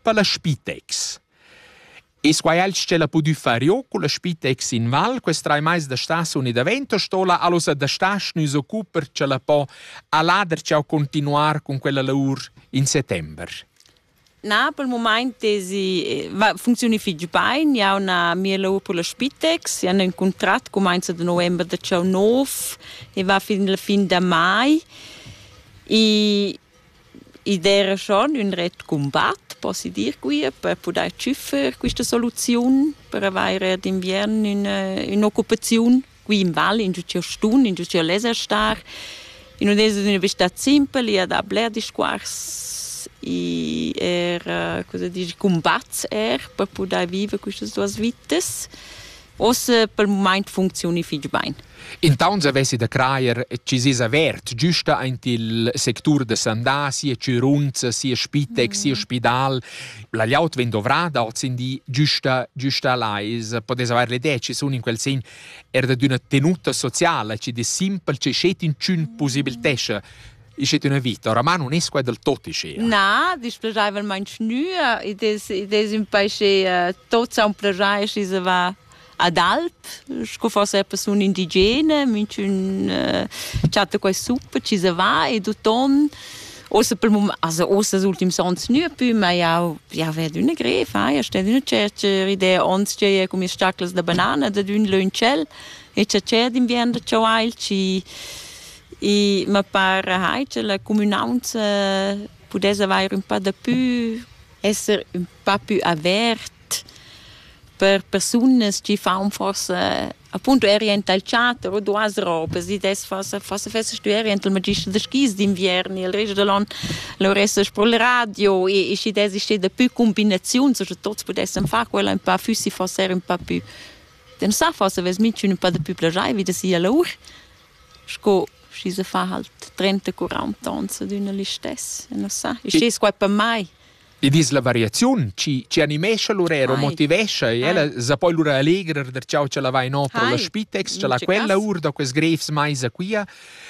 per la Spitex. E quai als ce la pudü far io con la Spitex in Val quest trai mais da staziun e da vento stola allosa da stas nus occuper ce la po a lader ciao continuar con quella lavur in settember. Na, pel mumaint tesi eh, funzioni fich bain, ja una mia lavur per la Spitex, ja un contrat comenza da november da ciao nov e va fin la fin da mai e id era schon ün ret cumbat, possi dir quia, per pudair tschüffer quista soluziun per avair d'inviern üna ün'occupaziun qui in val, ingio ch'eu stun, ingio ch'eu leza star. I nun es üna vista simpel, i ha da bler discuors, i eir, cosa dir, cumbats eir per pudair viver quistas duos vitas. Ossa pel mumaint funcziuni fich bain. Intauns avessi da crajer chi s'es avert güsta aint il sectur da sandà, sia chürunza, sia spitec, sia spidal. La gliaut vegn dovrada hoz in di güsta, güsta là. I's podess avair l'idea chi sun in quel sen er da d'üna tenuta sociala chi dess simpel, chi schet inchün pusibiltescha Ist es üna vita, oramà nun es quai del tot ischea. Na, displegaivelmaing nü, id es, id es ün pais che tot sa plagià e schi se va ad alp, sco forse persune indigene, minchün chatta quai sup, ci se va e d'uton Außer per mum, also außer els ultims ons nü pü, ma jau jau ved üna grev, eh? jau sted üna tschert idea ons che cu mis staclas da banana, dad ün lön tschel e cha tschè d'inviern da chaual ci I ma para hai cha la cumünaunza pudess avair ün pa dapü, esser ün pa pü avert per persunas chi faun forsa appunto eir aint dal teater o duas robas. I dess forsa forsa fessast tü eir aint al magister da skis d'inviern e il rest da l'on lur essast pro il radio e e schi dess ester dapü cumbinaziuns o scha tuots pudessan far quella ün pa füssi forsa eir ün pa pü. Dann sa forsa vess minchün ün pa dapü plagiaivi da sia lour. sco schi se fa halt 30-40 ons ad üna listess, non sa. Il stes qua per mai. Id es la variaziun chi chi animescha l'urer o motivescha e ella sa poi lura allegrer der ciao cha la vai no pro la spitex, cha la quella our da quels grefs maisa quia.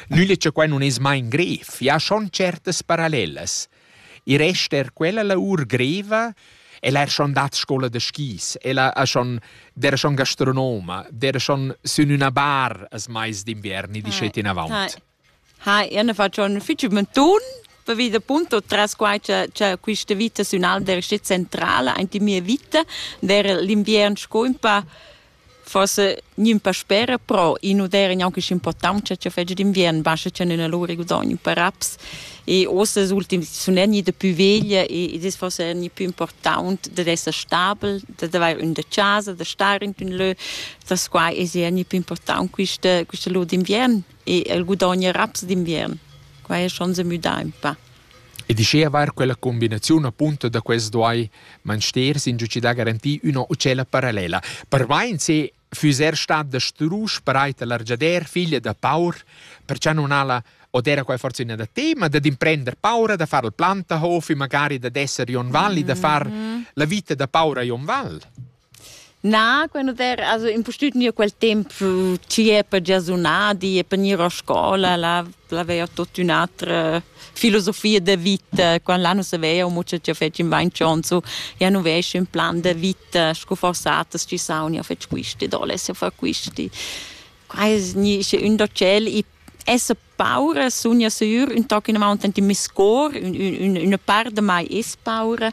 Nüle cha quai nun es mai in gref, i ha schon certas parallelas. I resta er quella lavur greva. El ha schon dat scola da skis, el ha schon dera schon gastronoma, dera schon sün üna bar as mais d'inviern e dischet inavant. Ha, io ne faccio un ufficio mentun, vi da punto tras quai che, che questa vita sün Alder è centrale, anche mia vita, der l'inviern sco un po' forse gnün pa spera, però in uder è anche importante che fece d'inverno, basta che non allora guadagni per raps e ossa els ultimi sun egni da più veglia e ed es forse egni più important da esser stabel, da d'avair ün da casa, da star in ün lö, das qua es egni più important quista quista lur d'inviern e el guadagna raps d'inviern. Quai es schon se müdà ün pa. Ed uschia vair quella cumbinaziun apunta da quels duai Mansters insatgi da garantir üna otschella parallela. Per vain se füss er stat da strusch pareit a l'argiader figlia da paur, perciò non ha la od era quai forse üna da tema da d'imprender paura da far il plantahof e magari da d'esser Jon Val e da far la vita da paura a Jon Val. Na, quando der also impustüt gnir quel temp chi è per gia sunà di e per gnir a scola, là l'aveia tuot ün'atra filosofia de vita. Quand là nu saveia amo cha cha fetsch in vain chonso, ja nu vesc ün plan de vita sco forsatas chi saun, ja fetsch quisti, do lesse far quisti. Qua es gnì sche ün da tschel i esser paura sun ja sür ün toc in avunt ant in mi scor, ün, ün, üna part da mai es paura.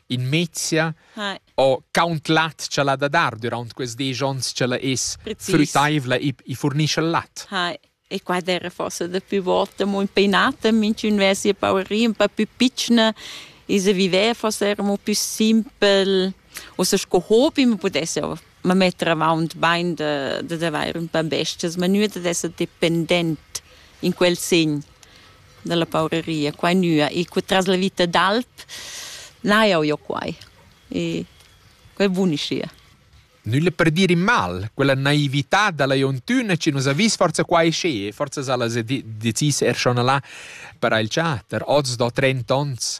in mezia Hi. o count lat cha l'ha da dar durant quels desch ons cha la es Precis. frütaivla e, e furnischa lat. Hi. E qua era forse da più volte molto impegnato, minch'un aveva sia paurina un po' più piccina e se viveva forse era un po' più simpel, o se sco hobby, ma potesse me metter avaunt bain da, da d'avair ün pa bestias, ma nua dad esser dependent in quel segn da la pauraria, qua e nua. E cu tras la vita d'alp n'ha jau jo quai. E quai buniscia. Nulla per dir in mal, quella naività da la Jontuna che nus ha vis forza qua e sche, forza sa las decis er schon là per il chatter, oz do trenta onns.